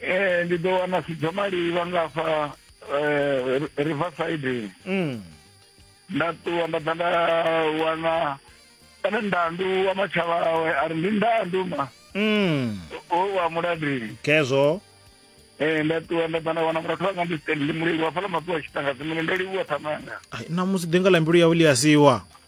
eh ndi ḓo wana sidzo malivha nga fa eh, riverside mm. nda ṱuwa nda ḓa nda wana kana ndandu wa matshava awe a ri ndi ndandu ma mm. o wa muladini kezwo Eh nda ṱuwa nda ḓa nda wana murathu wanga ndi stand ndi mulivha fhala mapiwa tshitanga dzimune ndo livhuwa thamanga namusi ḓinga ḽa mbilu yawe ḽi a siwa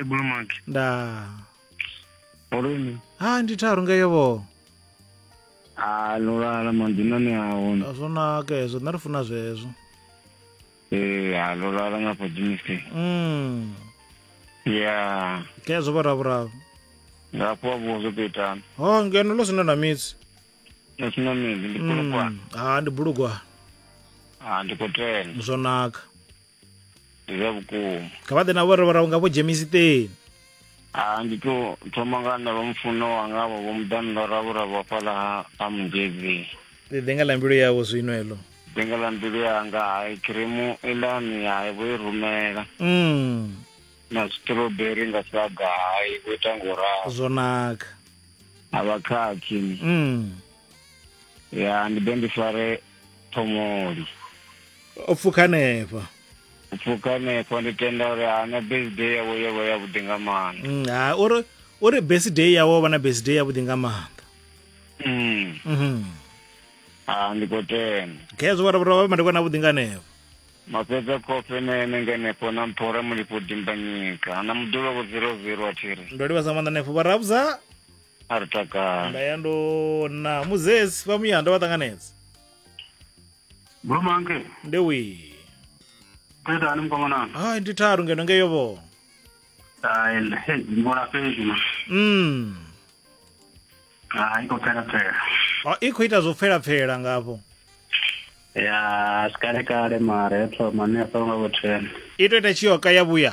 ebulumaki nda olweni ha ndi tharu ngeyo vho a lulala mandinani ahona a zwo naka hezwo nṋe ri funa zwezwo ee a lulala nga fodimisi mm ya kezwo vhoravhuravo ngafho wa vhuwo zwo tou itana ho ngeno ḽo sina na midzi nasina midzi ndi kulukwana ha ndi bulugwana a ndi khou tenda zwo naka ndi zwa vhukuma kha vha ḓe na vhorevhora unga vho dzhemisiteni a ndi to thoma nga na vhamufuno wanga vho vhomuḓani ḽa ravhura vha fhaḽa ha ha mugezi ḽi ḓe nga ḽa mbilu yavho zwino heḽo ḓenga ḽa mbilu yanga hai khiremu iḽani hai vho i rumela mm. na strawberry nga saga hai vho ita ngo ralo zwo naka a vha khakhi mm. ya ndi ḓe ndi fare phomoli o pfuka hanefha u pfuka hanefho ndi tenda uri hana birthday yawe yo vha yavhuḓi nga maanḓa Mm, ha uri uri birthday yawe vha na birthday yavhuḓi nga maanḓa Mm. Mhm. Ah, ndi khou tenda khezwo vhara vhara vha madekwa na vhuḓi nga hanefho mafhedza kofe na ene ngenefho na mphora mulifho dimbanyika na muḓulo vho zero zero a thiri ndo livhasa maanḓa hanefho vha rabudza a ri takale nda ya ndo na muzesi vha muya ndo vha ṱanganedza Brumanke, nde wii thetani mkongonanga. hai ndi tharu ngeno ngeyo vho Hayi, hey, ngibona fezi ma. mm. Hayi kophela phela. Ah, i khou ita zwo pfelapfela ngafho Ya, sikale kale mara eto mane songa kuthena. i tou ita tshiyoka ya vhuya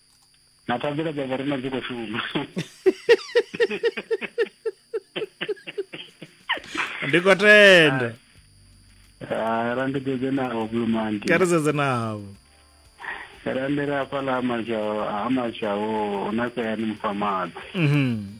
na thabelo dza vhorina dzi khou shuma ndi khou tenda Ah, ra ndi dzedze navho blue monday kha ri sedze navho ra ndi ri hafhaḽa ha mashaho ha mashaho na sayani mufamadzi Mhm.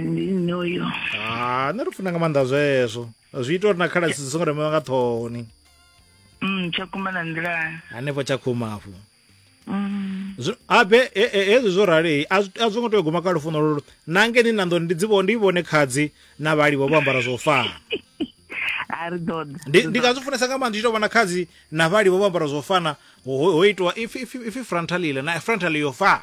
ndi nṋe uyo ha nṋe ri funa nga maanḓa zwezwo zwi ita uri na khalasi dzi songo remewa nga ṱhohoni mm, tshakhuma na nḓilani hanefho tshakhuma afho mm. abe hezwi zwo ralei a zwo ngo tea u guma kha lufuno lolo na ngeni na ndo ndi dzi ndi vhone khadzi na vhaliwa vho ambara zwo fana ndi nga zwi funesa nga maanḓa tshi tou vhona khadzi na vhaliwa vho ambara zwo fana ho itiwa ifi frontal ile na frontal yo fana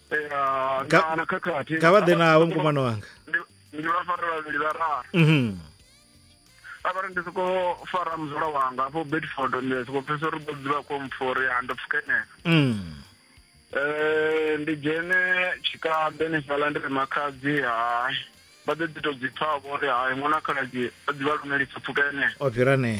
ya Ka- na na khakhathi kha vha ḓe navho mukomano wanga Ndi- ndi vha fara vhavhili vhararu Mhm. avhari ndi soko fara muzula wanga afho bedford ndi soko pfesa uri ḓo dzivha ko mpfori ha ndo pfukenela Mm. Eh, ndi dzhene tshikaḓe ni fhaḽa ndi ri makhadzi hai vha ḓo ḓi to dzi pfa vho ri hai ṅwana khaladzi o ḓivha lumelisa pfukenela o fhira ne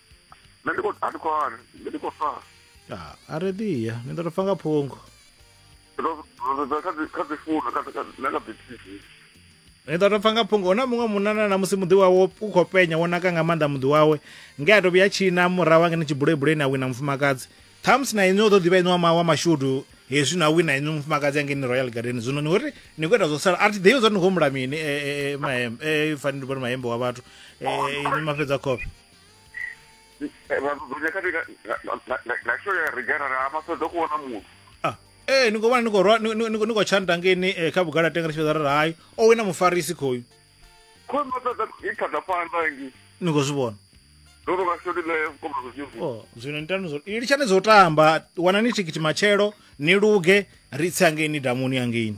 nṋe ndi khou a ndi khou wana nṋe ndi khou fa ah, a ri ḓi ya ni ḓo to fa nga phungo rosedza kha dzi- kha dzifounu kha dzi- kha dzi- na kha dzi tv ni ḓo to pfa nga phungo huna muṅwe munana na musi muḓi wawe u khou penya wo naka nga maanḓa muḓi wawe nge a to vhuya tshina murahu angene tshibulebuleni a wina mufumakadzi ṱhamusi na inwi o ḓo ḓivha inwi wa ma- wa mashudu hezwi na wina inwi mufumakadzi angeni royal garden zwino ni uri ni khou ita zwo sala a thi ḓivhi zwa uri ni khou humbula mini eh, eh, eh, mahem- eh, fanele ndi vhone mahembe wa vhathu Eh, inwi mafhedza khofhe Ah, ee ni khou vhona ni khou rwa- ni- ni- ni khou- ni khou tshanta ngeni eh, kha vhugala tenga tshifhedza ra ri hayi o wina mufarisi khoyu ni khou zwi vhona o zwino nitani zwo i litshani zwo tamba wanani thikhithi matshelo ni luge ri tse hangeini damuni hangeini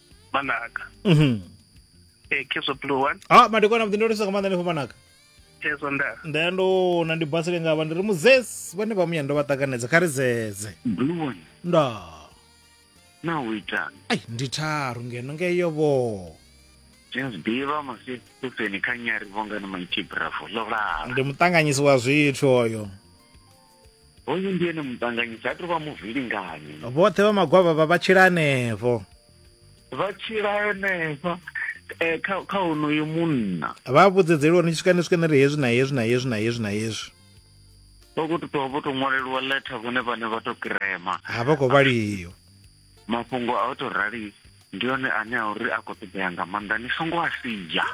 manaka Mhm. e keso blue one ah madekwana vhuḓi ndo lisa nga maanḓa nefho manaka keso nda nda ndo na ndi basile nga vha ndi ri muzesi vhane vha muya ndo vha ṱanganedza kha ri zeze blue one nda na u itani ai ndi tharu ngeno ngeyo vho james b vha masifeni kha nyari vhongani maiti bravo lovhava ndi muṱanganyisi wa zwithu oyo hoyu ndi ene muṱanganyisi ha tovha muvhilinganyi vhoṱhe vha magwavha vha vha tshila hanefho vha tshila henefha eh, kha kha honoyo munna vha vhudzedzeliwa ni swika ni swika ni ri hezwi na hezwi na hezwi na hezwi na hezwi vha khou tou vho tou ṅwaleliwa letter vhone vhane vha tou kirema ha vha khou vhaliwa mafhungo a u to rali ndi one ane a uri a khou ṱoḓea nga maanḓa ni songo a sidzha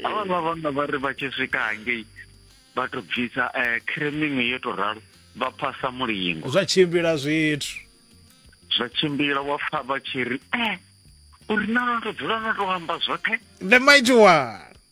avha vha vhanna vha ri vha tshi swika hangei vha to bvisa um eh, creming yo to ralo vha phasa mulingo zwa tshimbila zwithu zwa tshimbila wa pfa vha tshi ri e uri na no to dzula no to amba zwoṱhe the mighty one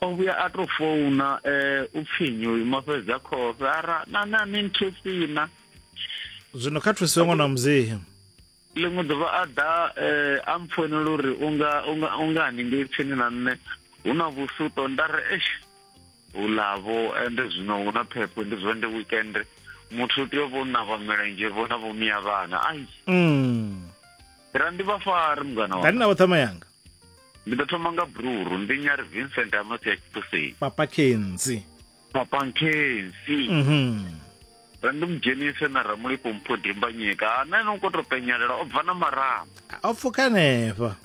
o vhuya a tou founa um u pfhi nyi uyu mafhedza khofhe ara na na ni nthusina zwino kha thusiwe ṅwana wa muzehe ḽiṅwe ḓuvha a ḓa um a mpfoinela uri unga unga unga haningei tsini na nṋe hu na vhusuto nda ri esh hulavho ende zwino hu na phepho ndi zwa ndi weekend muthu u tea u vho navha milenzhe vho na vhomiya vhana ai mm. ra ndi vha fari mungana wa navho ṱhama yanga ndi ḓo thoma nga bruru ndi nyari vincent amasi ya tshitoseni papa kenzi papa kenzi mm -hmm. randimudzhenise na ramulipo mpho dimbanyika hanani u koto penyelela o bva na marama o pfuka hanefha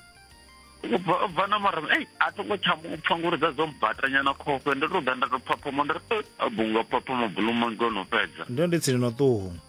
o bva na marama ei a tongo tsha mu pfa ngori dza dzo mbatanyana khofhe ndo to ḓa nda to phaphoma nda ri a bunga phaphama buluma ngono fhedza ndo ndi tsini no ṱuhu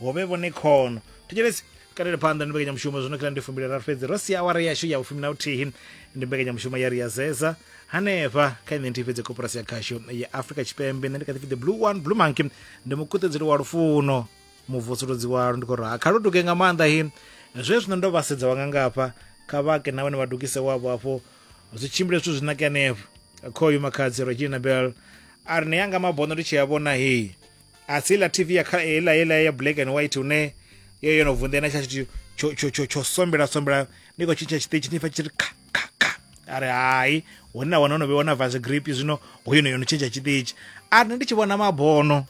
hove vhone khono thetshelesi kalele phanḓa ndi mbekanyamushumo zwino kila ndi fumbile raru fhedzi ro sia awara yashu ya vhufumi na vhuthihi ndi mbekanyamushumo ya ri ya zeza hanefha kha ine nthihi fhedzi koporasi ya khasho ya afrika tshipembe nṋe ndi kha ḓipfi the blue one blue monkey ndi mukuṱedzeli wa lufuno muvusuludzi walo ndi khou raha kha lu duge nga maanḓa hi zwe zwino ndo vhasedza wanga ngafha kha vhake na vhone vha dugise wavho hafho zwi tshimbile zwithu zwi nake hanefho khoyu makhadzi regina bell a ri ne yanga mabono ndi tshi a vhona hei a si la tv ya kha ela ela ya black and white une yo yo no vunḓe na tshatshi tsho tsho tsho tsho sombela sombela ni ko tshintsha tshiṱitshi ni fa tshi kha kha kha ari hai hona wana no be wana vase grip zwino hoyo no yo no tshintsha tshiṱitshi a nne ndi tshi vhona mabono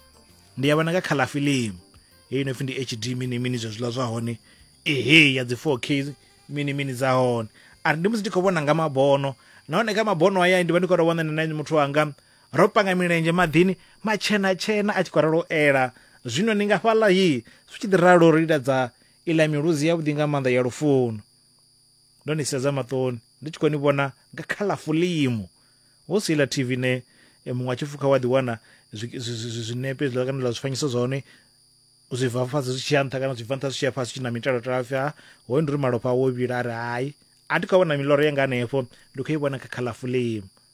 ndi ya vhona nga khala film heyi no pfi ndi HD mini mini zwa zwiḽa zwa hone ehe ya dzi 4K mini mini dza hone ari ndi musi ndi khou vhona nga mabono nahone kha mabono aya ndi vha ndi khou tou vhona na muthu wanga Ro panga milenzhe maḓini matshena-tshena a tshi khou ralo u ela, zwino ni nga fhaḽa hi zwi tshi ḓi ralo ri liladza iḽa miluzi yavhuḓi nga maanḓa ya lufuno. Ndo ni sedza maṱoni ndi tshi khou ni vhona nga kha ḽa fulimu, hu si iḽa TV ine muṅwe a tshi pfukha wa ḓiwana zwinepe zwiḽa kana ḽa zwifanyiso zwa hone zwi bva fhasi zwi tshi ya nṱha kana zwi bva nṱha zwi tshi ya fhasi tshi na mitalo tala pfhi ha hoyo ndi uri malofha awo vhila a ri hai a thi khou vhona miloro yanga hanefho ndi khou i vhona kha kha ḽa fulimu